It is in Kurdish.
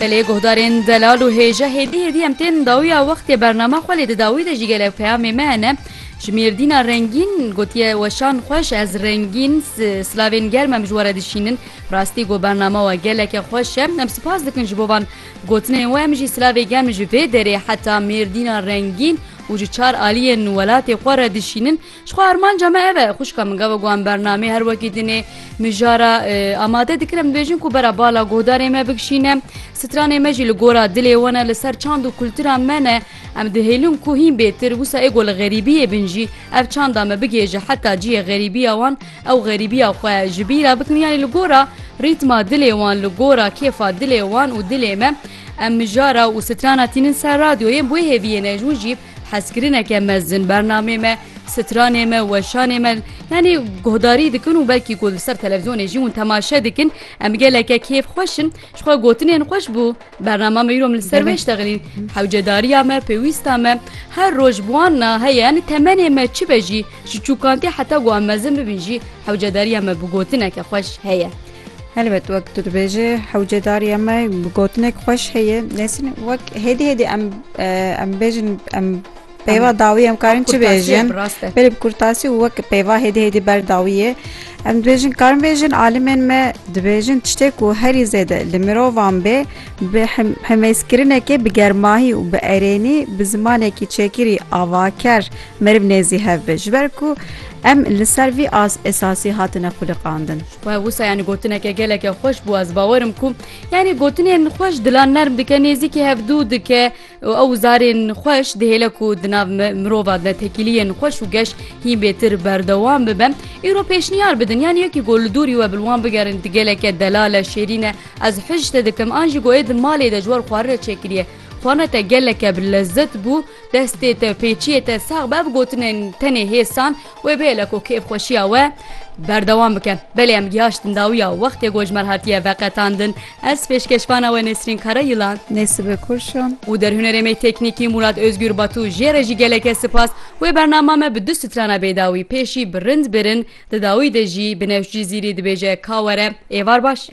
Belê guhdarên delal û hêje hêdî hêdî em tên dawiya wextê bernama xwe lê di dawî de jî gelek peyamê me hene ji Mêrdîna rengîn gotiye weşan xweş ez rengîn silavên germ em ji were dişînin rastî got bernama we geleke xweş e em spas dikin ji bo van gotinên we em jî silavê germ ji vê derê heta Mêrdîna rengîn û ji çar aliyên welatê xwe re dişînin Jixwe armanca me ev e xwişka min gava got em bernameyê her wekî dinê mijara amade dikir em dibêjin ku bera bala guhdarê me bikişîne stranê me jî li gora dilê wan e li ser çand û kultura me ne em dihêlin ku hîn bêtir wisa êgo li xerîbiyê bin jî ev çanda me bigêje heta ciyê xerîbiya wan ew xerîbiya xwe ji bîra bikin yanî li gora rîtma dilê wan li gora kêfa dilê wan û dilê me em mijara û strana tînin ser radyoyên bu hêviyê nejûn jî Hezkirineke mezin bernamê me, stranê me, weşanê me yanî guhdarî dikin û belkî ku li ser televîzyonê jî hûn temaşe dikin em geleke kêf xweş in ji xwe gotinên xweş bû bernama me îro min li ser wê ştexilîn hewcedariya me pêwîsta me her roj bi wan na heye yanî temenê me çi be jî ji çûkantê heta ku em mezin bibin jî hewcedariya me bi gotineke xweş heye. Helbet wek tu dibêjî hewcedariya me bi gotinek xweş heye nesin wek hêdî hêdî em em bêjin em peyva dawî em karin çi bêjin belê bi kurtasî û wek peyva hêdî hêdî ber dawî ye em dibêjin karin bêjin alimên me dibêjin tiştê ku herî zêde li mirovan bê bi hemêzkirinekê bi germahî û bi erênî bi zimanekî çêkirî avaker meriv nêzî hev be ji ber ku em li ser vî as esasî hatine xwiliqandin. Wah wisa yani gotineke geleke xweş bû ez bawer im ku yani gotinên xweş dilan nerm dike nêzîkî hevdû dike û ew zarên xweş dihêle ku di nav mirova de tekîliyên xweş û geş hîn bêtir berdewam bibe îro pêşniyar bidin yani yekî gol li dûrî we bi wan bigerin di geleke delale şêrîne ez hij te dikim an jî goyê di malê de ji wer xwarire çêkiriye xwana te geleke bi lezzet bû destê te pêçiyê te sax bev gotinên tenê hêsan Wê bêle ku kêfxweşiya we berdewam bike. Belê em giyaştin dawiya wextê ku ji me re hatiye veqetandin. Ez pêşkêşvana we Nesrîn Karayîlan. Nêsibe Kurşun. Û derhunerê me teknîkî Mûrat Ozgûr Batû jê re jî geleke sipas. Wê bernama me bi du strana bêdawî, pêşî bi rind birin, di dawî de jî bi newş Cizîrî dibêje Ka were êvar baş.